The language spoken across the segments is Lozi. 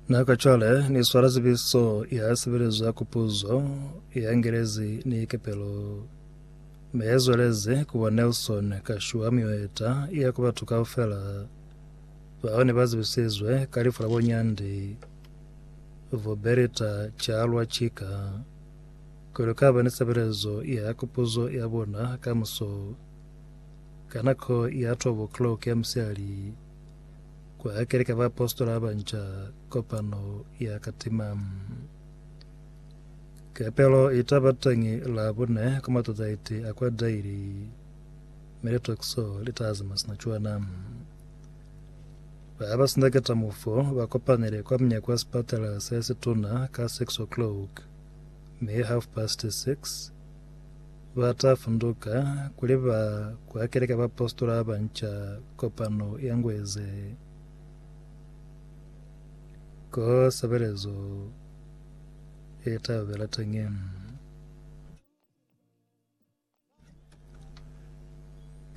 Na ka cwale ni swala tsebiso ya sebelezo ya kupuzo ya Ngelezi ni kepelo me ya zweleze kuba Nelson Kashuwa mioeta ya ku batu kaufela bao ne ba zebisizwe ka lifu la bonyandi Vuberita Chalwa Chika kwelo ka ba ni sebelezo ya kupuzo ya bona ka muso ka nako ya 12 o'clock ya msihali Ku hakele ka baapositola ba banca kopano ya ka tima. Kepelo i ta ba teñi Labune ku matata iti a kwa Daily. Mi litokiso li ta zama sina cwana. Ba ba sindaketa mufu ba kopanile kwa munyako wa sipatala se situna ka 6 o'clock, mi half past 6 Ba ta funduka kuli ba kuhakele ka baapositola ba banca kopano ye ngu eze ko sebelezo ye ta yobela teñi.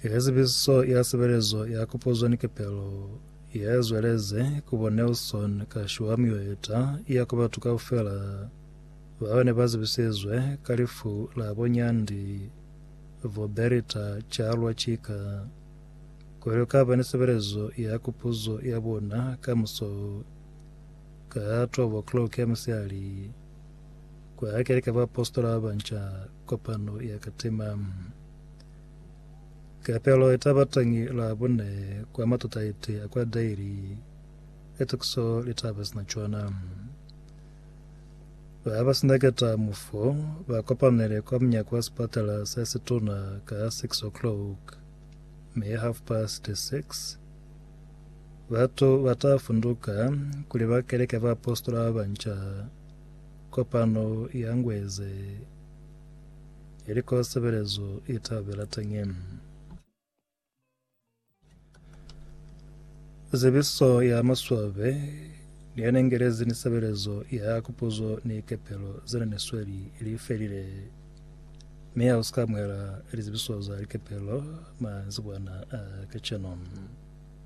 Ye zibiso ya sebelezo ya kopozwa ni kepelo ye zweleze ku bo Nelson ka shwa miyo ye ta iya ku batu kaufela Bao ne ba zibisezwe ka lifu la bo Nyandi v'o Berita Chalwa ki ka kwelo ka ba ni sebelezo ya kupuzo ya bona ka muso ka 12:00 ya musihali kwa Keleke ya Baapositola ba Banca kopano ya Katima. Kapelo i ta ba teñi Labune kwa matutaiti a kwa Daily, etukiso li ta ba sina cwana. Ba ba si na ketamofo ba kopanele kwa munyako wa sipatala se situna ka 6 o'clock, mi half past 6 batu ba ta funduka kuli ba keleke baapositola ba banca. Kopano i angueze ili ko sebelezo i ta bela teñi. Zebiso ya maswabe ni ya nengelezi ni sebelezo ya kupuzo ni kepelo zena ni sweli li felile, mi ha usika amuhela lizebiso za likepelo manzibwana a kacenu.